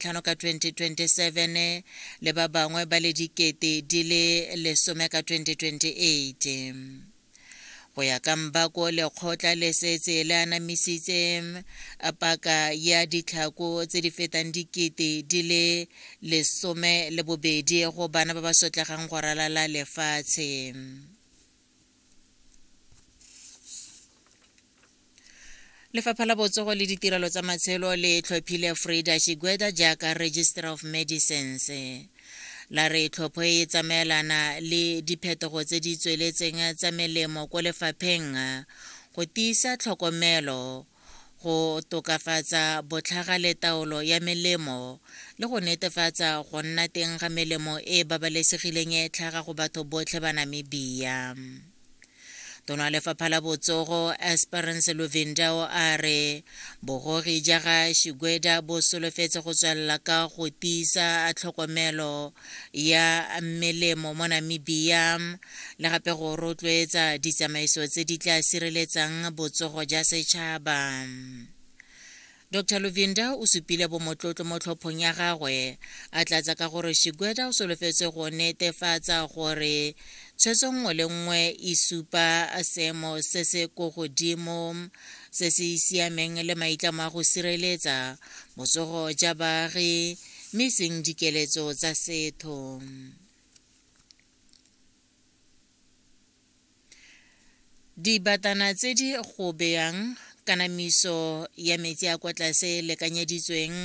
tlhano ka 2027 le ba bangwe ba le dikete di le lesome ka 2028 go ya ka mbako lekgotla le setse le anamisitse paka ya ditlhako tse di fetang dikete di le lesome le bobedi go bana ba ba sotlegang go ralala lefatshe lefapha la botsogo le ditirelo tsa matshelo le tlhophile frida shigweda jaaka register of medicines la re tlhopho e e tsamaelana le diphetogo tse di tsweletseng tsa melemo ko lefapheng go tiisa tlhokomelo go tokafatsa botlhaga le taolo ya melemo le go netefatsa go nna teng ga melemo e e babalesegileng e e tlhaga go batho botlhe ba Namibia. Tono ya lefapha la botsogo Esperance Luvindao a re bogogi ja ga Shigweda bo solofetse go tswelela ka go tiisa tlhokomelo ya melemo mo namibia le gape go rotloetsa ditsamaiso tse di tla sireletsang botsogo ja setšhaba dr luvinda o supile bomotlotlo mo tlhophong ya gagwe a tlatsa ka gore shigweda o solofetse go netefatsa gore tshwetso nngwe le nngwe e supa seemo se se ko godimo se se siameng le maitlamo a go sireletsa botsogo ja baagi mme e seng dikeletso tsa setho dibatana tse di go beyang kanamiso ya metsi a kwa tlase lekanyeditsweng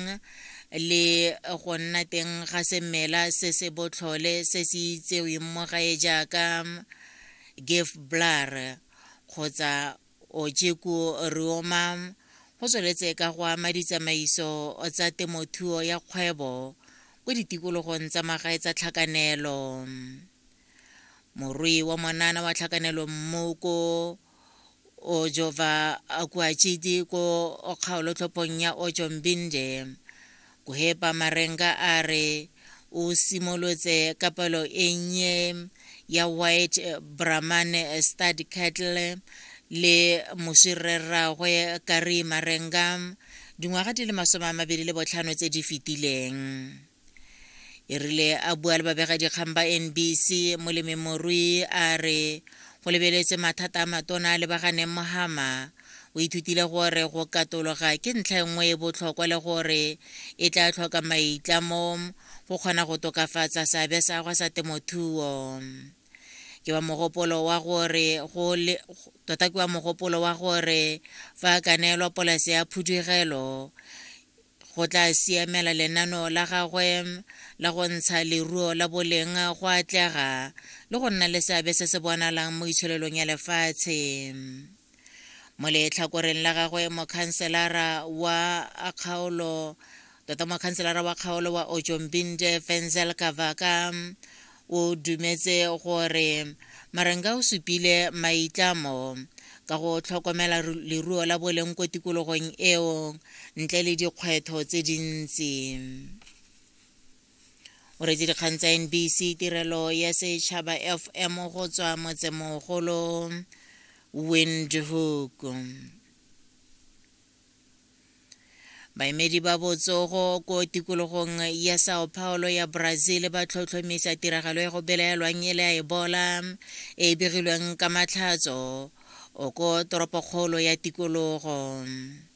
le go nna teng ga semela se se botlhole se se itseweng mo gae jaaka gef blar kgotsa Ojeku Riomam go tsweletse ka go ama ditsamaiso tsa temothuo ya kgwebo ko ditikologong tsa magae tsa tlhakanelo. Morui wa monana wa tlhakanelo mmu ko Ojova Akuachidi ko kgaolotlhophong ya Ojombinde Kuhepa Marenga a re o simolotse ka palo e nnye ya White Brahman Stud Cattle le moswi rre rraagwe Kari Marenga dingwaga di le masome a mabedi le botlhano tse di fetileng. E rile a bua le babegadikgang ba NBC, molememorui a re go lebeletswe mathata a matona a lebaganeng mo Hama O ithutile gore go katologa ke ntlha e nngwe e botlhokwa le gore e tla tlhoka maitlamo go kgona go tokafatsa seabe sa gwa sa temothuo. Ke wa mogopolo wa gore go le tota ke wa mogopolo wa gore fa a ka neelwa polase ya phudugelo go tla siamela lenano la gagwe la go ntsha leruo la boleng go atlega le go nna le seabe se se bonalang mo itsholelong ya lefatshe. mo letlhakoreng la gagwe mokhanselara wa kgaolo tota mokhanselara wa kgaolo wa ojombinde fenzel kavaka o dumetse gore marenga o supile maitlamo ka go tlhokomela leruo la boleng ko tikologong eo ntle le dikgwetho tse dintsi o retse dikgang tsa nbc tirelo ya setšhaba fm go tswa motsemogolo windhoek baemedi ba botsogo ko tikologong ya sao paulo ya brazil ba tlhotlhomisa tiragalo ya go belaelwang e le a ebola e e begilweng ka matlhatso o ko toropokgolo ya tikologo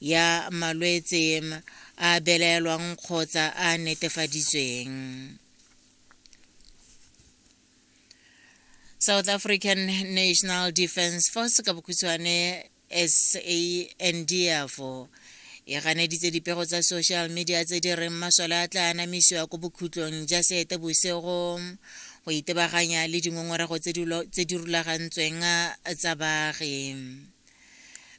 ya malwetse a belaelwang kgotsa a netefaditsweng south african national defence force ka bokhutshwane sandf e ganeditse dipego tsa social media tse di reng masole a tla anamisiwa ko bokhutlong ja seete bosego go itebaganya le dingongorego tse di rulagantsweng tsa baagi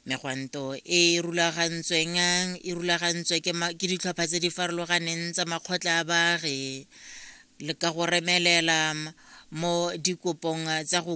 megwanto e e rulagantsweng e rulagantswe ke ma- ke ditlhopha tse di farologaneng tsa makgotla a baagi le ka go remelela m- mo dikopong tsa go